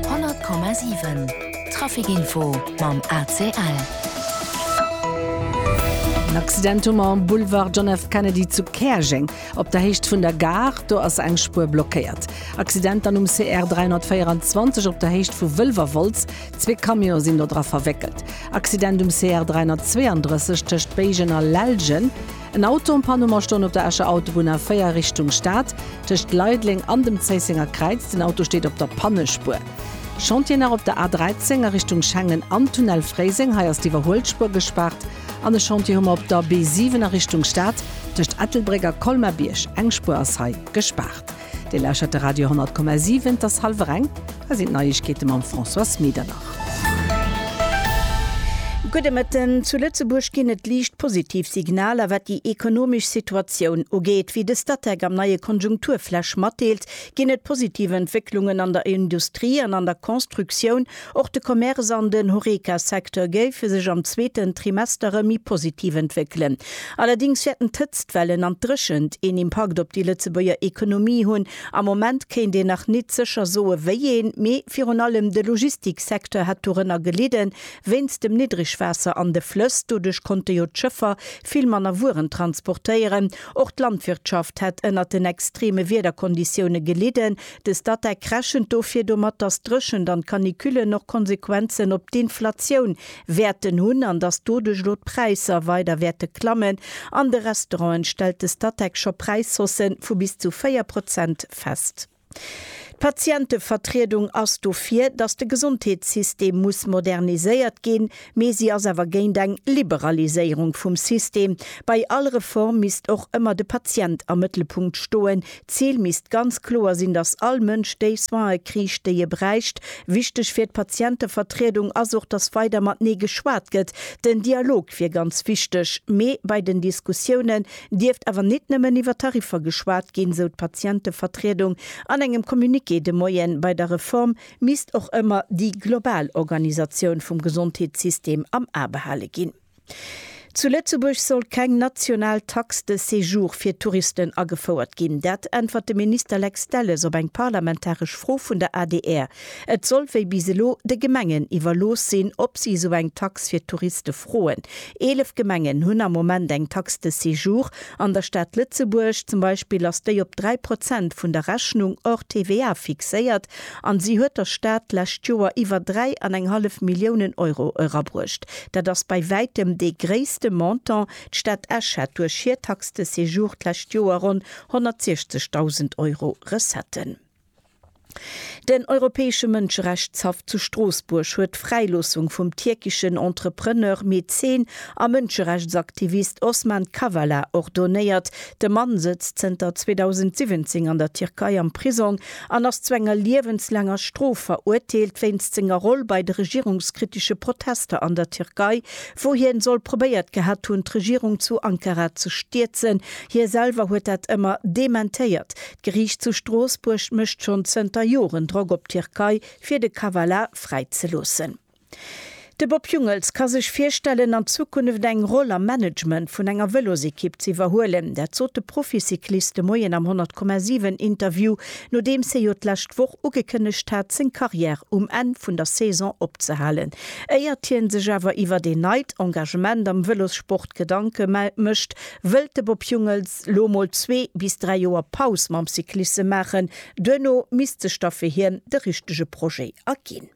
100,7 Trafic Info mam ACL. En Accident um en Boulevard John F. Kennedy zu Käerjeng. Op der Héicht vun der Gare, do ass eng Spuer blockéiert. Accident dann um CR 324 op der Héicht vu Wëlwerwolz. Zwee Camionë sinn do dra verwéckelt. Accident um CR 332 tëscht Béigen a Lellgen. En Auto en panne Mer stoen op der Escher Autobunn A4 Richtung Stad, tëscht Leideleng an dem Zéissenger Kräiz. Den Auto steet op der Pannespuer. Chantier nach op der A13 a Richtung Schengen an Tunnel Fréiseng, hei ass d'Iwwerhuelspuer gespaart. An e Chantier hu mer op der B7 a Richtung Stad, tëscht Ettelbréck a Colmar-Bierg. Eng Spuer ass hei gespaart. Dir lauschert de Radio 10,7, et ass hallwer eng, hei sinn d'Neiegkeete mam Françoise Medernach. Gudde Mëtten, Zu Lëtzebuerg ginn et liicht positiv Signaler, wat déi ekonomesch Situatioun ugeet. Wéi de Statec am neie Konjunkturflash matdeelt, ginn et positiv Entwécklungen an der Industrie an an der Constructioun. Och de Commerce an den Horeca-Secteur géife sech am zweeten Trimester erëm méi positiv entwéckelen. Allerdéngs wäerten d'Hëtztwellen an d'Dréchent een Impakt op déi Lëtzebuerger Ekonomie hunn. Am Moment kéint een nach nit sécher soe wéi een, mee virun allem de Logistik-Secteur hätt dorënner gelidden, wéinst dem Niddregwaasser an de Flëss. Doduerch konnte jo d'Schëffer vill manner Wueren transportéieren. Och d'Landwirtschaft hätt ënnert den extreme Wiederkonditioune gelidden, De Statec rechent dofir domat, datt d'Dréchent an d'Canicullen och Konsequenzen op d'Inflatioun wäerten hunn an datt doduerch elo d'Präisser weider wäerte klammen. An de Restauranten stellt de Statec scho Präishausse vu bis zu 4 Prozent fest. D'Patientevertriedung ass dofir, datt de Gesondheetssystem muss moderniséiert ginn. Mee si ass awer géint eng Liberaliséierung vum System. Bei all Reform misst och ëmmer de Patient am Mëttelpunkt stoen. D'Zil misst ganz kloer sinn, datt all Mënsch déi Soine kriicht, déi e bräicht. Wichteg fir d'Patientevertriedung ass och, datt weider matenee geschwat gëtt. Den Dialog wier ganz wichteg. Mee bei den Diskussiounen dierft awer nit nëmmen iwwer Tariffer geschwat ginn, sou d'Patientevertriedung an engem Communiqué de Moien. Bei der Reform misst och ëmmer déi global Organisatioun vum Gesondheetssystem am A behale ginn. Zu Lëtzebuerg soll keng national Taxe de séjour fir Touristen agefouert ginn. Dat äntwert de Minister Lex Delles op eng parlamentaresch Fro vun der adr. Et soll wéi bis elo de Gemengen iwwerlooss sinn, ob si esou eng Tax fir Touriste froen. Eelef Gemengen hunn am Moment eng Taxe de séjour. An der Stad Lëtzebuerg zum Beispill ass déi op dräi Prozent vun der Rechnung hors TVA fixéiert. An si huet der Stad d'lescht Joer iwwer dräi an eng hallef Milliounen Euro erabruecht. Dat ass bei wäitem dee gréisste Montant. D'Stad Esch hat duerch hir Taxe de séjour d'lescht Joer ronn 160.000 Euro Recetten. Den Europäesche Mënscherechtshaff zu Stroossbuerg huet d'Fräiloossung vum tierkeschen Entrepreneur, Mäzen a Mënscherechtsaktivist Osman Kavala ordonéiert. De Mann sëtzt zënter 2017 an der Tierkei am Prisong an ass zu enger liewenslaanger Strof verurteelt wéinst senger Roll bei de regierungskritische Protester an der Tierkei, wou hien soll probéiert gehat hunn, d'Regierung zu Ankara ze stierzen. Hie selwer huet dat ëmmer dementéiert. D'Geriicht zu Stroossbuerg mécht schonn zënter Joren Drock op d'Tierkei, fir de Kavala fräizeloossen. De Bob Jungels ka sech virstellen, an Zukunft eng Roll am Management vun enger Vëlosekipp ze iwwerhuelen. Dat sot de Proficyclist de Moien am 100,7 Interview, nodeems hie jo d'lescht Woch ugekënnegt hat, seng Karriär um Enn vun der Saison opzehalen. Éiert hie sech awer iwwert een neit Engagement am Vëlossport Gedanke mécht, wëllt de Bob Jungels lo mol zwee bis dräi Joer Paus mam Cyclisse maachen. Duerno misst sech da fir hien de richtege Projet erginn.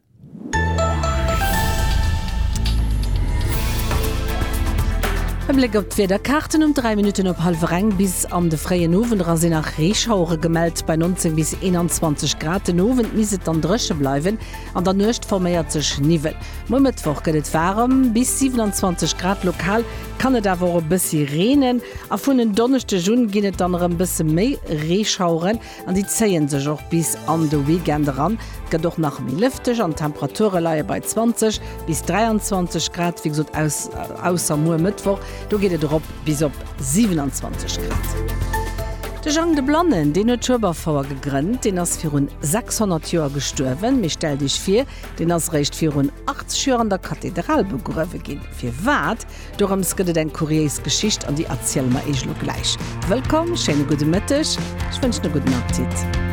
E Bléck op d'Wiederkaarten, Um 3 Minutten op hallwer eng bis an de fréien Owend era sinn nach Reeschauere gemellt, bei 19 bis 21 Grad. Den Owend misst et dann dréche bleiwen, an der Nuecht forméiert sech Niwwel. Muer Mëttwoch gëtt et waarem, bis 27 Grad, lokal kann et awer och e bëssi reenen a vun en Donneschdeg un ginn et dann erëm bësse méi Reeschaueren. An déi zéien sech och bis an de Weekend eran. Et gëtt och nach méi lëfteg an d'Temperature leie bei 20 bis 23 Grad, wéi gesot aus ausser muer Mëttwoch, do geet et erop bis op 27 Grad. De Jang de Blannen, deen huet d'Schueberfouer gegrënnt. Deen ass virun 600 Joer gestuerwen. Mee stellt Iech vir, deen ass eréischt virun 80 Joer an der Kathedral begruewe ginn. Firwat? Dorëms gëtt et eng kuriéis Geschicht an déi erziele mer Iech elo gläich. Wëllkomm, schéine gudde Mëtteg, ech wënschen e gudden Appetit.